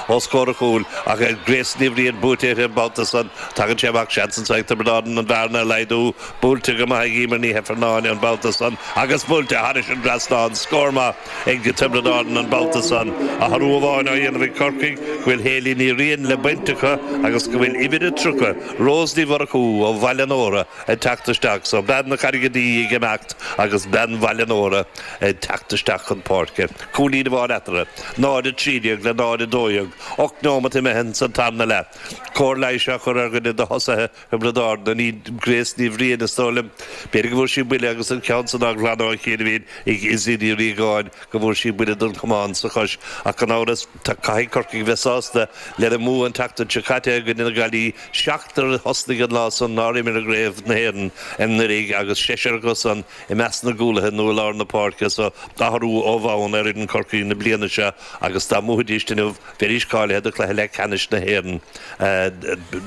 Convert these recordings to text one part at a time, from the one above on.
os comhair a chúil, ach Grace Ní Bhriain buaite uirthi an babhta san, tagann sé amach, seans ansan ag Tiobraid Árann an bhearna a laghdú. Buailte go maith ag Eimear Ní hEifearnáin an babhta san, agus buailte thairis an dtrasnán, scór maith ag Tiobraid Árann an babhta san. Athrú amháin á dhéanamh ag Corcaigh go bhfuil Hayley Ní Riain le baint acu agus go bhfuil uimhir a tríocha, Rose Ní Mhurchú ó Bhaile an Óra, ag teacht isteach. So bean na Carraige Duibhe ag imeacht agus bean Bhaile an Óra ag teacht isteach chun páirce. cúilín amháin eatarthu, 0, 13 le 0, 12, ocht neomat imithe ins an tarna leath, cóir leighis á chur ar dhuine de thosaithe Thiobraid Árann, Grace Ní Bhriain is dóigh liom, b'fhéidir go bhfuair sí buille agus an ceann san á ghlanadh ó chianaibhín ag Izzy Ní Riagáin go bhfuair sí buille den chamán sa chois ach gan amhras caithfidh Corcaigh bheith sásta lena mbua an tseachtain seo caite i gcoinne na Gaillimhe, seachtar a thosnaigh an lá san nár imir i gCraobh na hÉireann anuraidh agus seisear acu san. I measc na gcúlaithe nó i lár na páirce so athrú ó bhonn ar fhoireann Chorcaí na bliana seo agus dá mbuafaidís inniu bheidís cáilithe do chluiche leathcheannais na hÉireann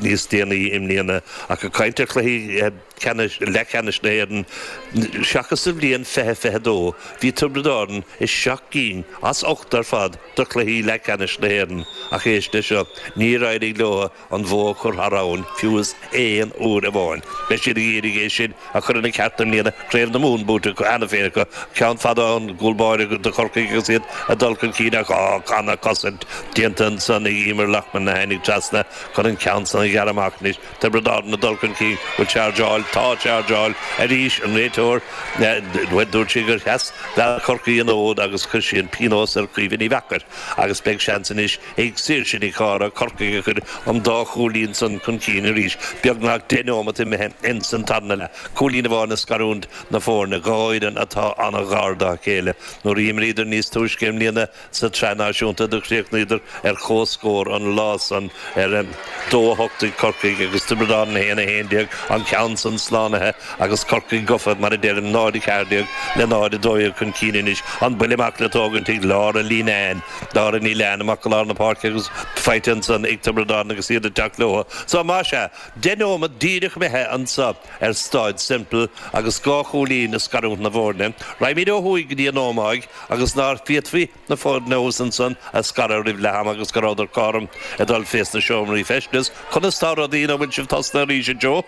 níos déanaí i mbliana. Ach ag caint ar chluichí ceannais, leathcheannais na hÉireann seachas sa bhliain fiche fiche a dó, bhí Tiobraid Árann i seacht gcinn as ocht ar fad de chluichí leathcheannais na hÉireann ach éist leis seo, níor éirigh leotha. an bhó a chur thar abhainn, fiú is aon uair amháin. Beidh siad ag iarraidh é sin a chur ina cheart i mbliana, Craobh na Mumhan buaite cheana féin acu, ceann fada ón gcúl báire do Chorcaigh agus iad ag dul chun cinn ach ana-chosaint déanta ansan ag Eimear Loughman a tháinig trasna chun an ceann san a ghearradh amach. Anois Tiobraid Árann ag dul chun cinn bhfuil chargeáil, tá chargeáil arís, an réiteoir, bhuel dúirt sé gur sheas leath Chorcaí an fhód agus chuir sí an pionós ar Chaoimhe Ní Mheachair agus beidh seans anois, ag Saoirse Nic Cárthaigh, Corcaigh a chur an dá chúilín san chun cinn arís beagnach deich neomat imithe ins an tarna leath, cúilín amháin ag scarúint na foirne, dhá fhoireann atá an-ghar dá chéile. Nuair a d'imríodar níos túisce i mbliana sa tSraith Náisiúnta do chríochnaíodar ar chomhscór an lá san ar a dó a hocht ag Corcaigh agus Tiobraid Árann 1, 11, an ceann san slánaithe agus Corcaigh gofa, mar a deirim, 0, 14 le 0, 12 chun cinn anois. An buille amach le tógaint ag Laura Leenane. Laura Leenane amach go lár na páirce agus faighte ansan ag Tiobraid Árann agus iad ag teacht leotha. So, más ea, deich neomat díreach imithe anso ar Staid Semple agus dhá chúilín ag scarúint na bhfoirne. Raghaimíd ó thuaidh go dtí an Ómaigh agus ná féadfaí na foirne thuas ansan a scaradh roimh leath-am agus go rabhadar cothrom ag dul fés na seomraí feistis. Conas tá rudaí? An bhfuil sibh tosnaithe arís a Joe?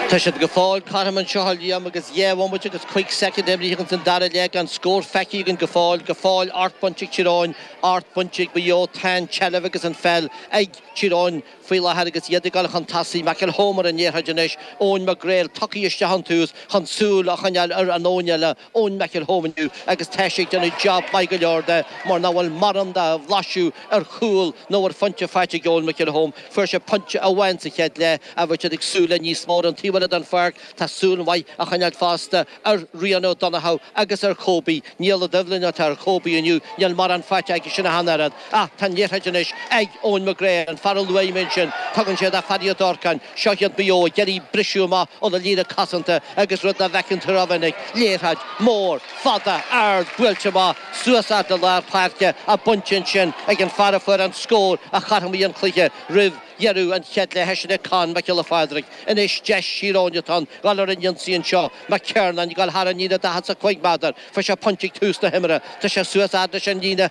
Tá siad go fóill, cothrom anseo a Liam, agus dhá bhomaite agus cúig soicind imrithe againn san dara leath gan scór feicthe againn go fóill, go fóill ocht bainte ag Tír Eoghain, ocht bainte ag Maigh Eo, tá an tseilbh agus an pheil ag Tír Eoghain faoi láthair agus iad ag dul chun tosaigh, McElholm ar an liathróid anois, Eoin McGreal tugtha isteach ón tús chun súil a choinneáil ar an Eoin eile, Eoin McElholm inniu agus tá sé ag déanamh jab maith go leor de mar nach bhfuil mórán de bhlaiseadh ar chúl nó ar phointe faighte ag Eoin McElholm. Fuair sé pointe amháin sa chéad leath ach bheadh siad ag súil le níos mó ar an taobh eile den pháirc. Tá súil mhaith á choinneáil fosta ar Rian O'Donoghue agus ar Kobe. Niall Ó Doibhlin atá ar Kobe inniu, níl mórán faighte aigesean ach an oiread. Ach tá an liathróid anois ag Eoin McGreal, an fear a luaidh mé ansin. Tugann sé do Phaddy Ó Durcáin, seo iad Maigh Eo ag iarraidh briseadh amach óna líne cosanta agus rud nach bhfeiceann tú ró-mhinic, liathróid, mór, fada, ard, buailte amach, suas fhad le lár páirce á baint ansin ag an fear a fuair an scór a chothromaigh an cluiche roimh dheireadh an chéad leithe, sin é Conn Mac Giolla Phádraig. Anois deis Thír Eoghain atá ann dhul ar an ionsaí anseo, McKernan ag dhul thar an líne daichead 's a cúig méadar, fuair sé pointe ag tús na himeartha, tá sé suas fhad leis an líne,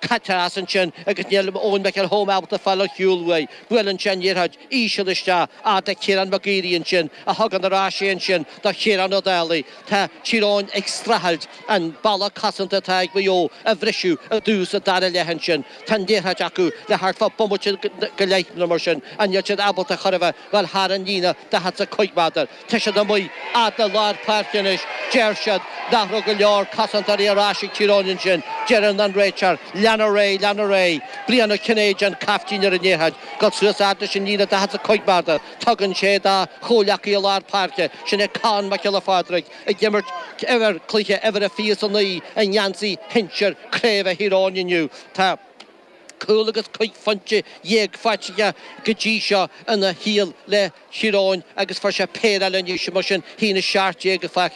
caitear as ansin agus níl Eoin McElholm ábalta fáil ar shiúl uaidh. Buaileann sé an liathróid íseal isteach fhad le Ciarán McGeary ansin a thugann ar ais é ansin do Chiarán Ó Dálaigh. Tá Tír Eoghain ag streachailt an balla cosanta atá ag Maigh Eo a bhriseadh i dtús an dara leath ansin. Tá an liathróid acu le thart fá bomaite go leith nó mar sin ach níl siad ábalta ar chor ar bith dhul thar an líne daichead 's a cúig méadar. Tá siad amuigh, fhad le lár páirce anois, deir siad, nach raibh go leor cosantóirí ar ais ag Tír Eoghain ansin, deireann an réiteoir, lean ar aghaidh, lean ar aghaidh. Brian Ó Cinnéide an caiftín ar an liathróid, dul suas fhad leis an líne daichead 's a cúig méadar, tugann sé dá chomhleacaí i lár páirce, sin é Conn Mac Giolla Phádraig ag imirt uimhir, cluiche uimhir a fiche is a naoi i ngeansaí shinsir craoibhe Thír Eoghain inniu. Tá. Cúl agus cúig phointe dhéag faighte aige go dtí seo ina shaol le Tír Eoghain agus fuair sé péire eile anois, mar sin, sin 17 faighte aige.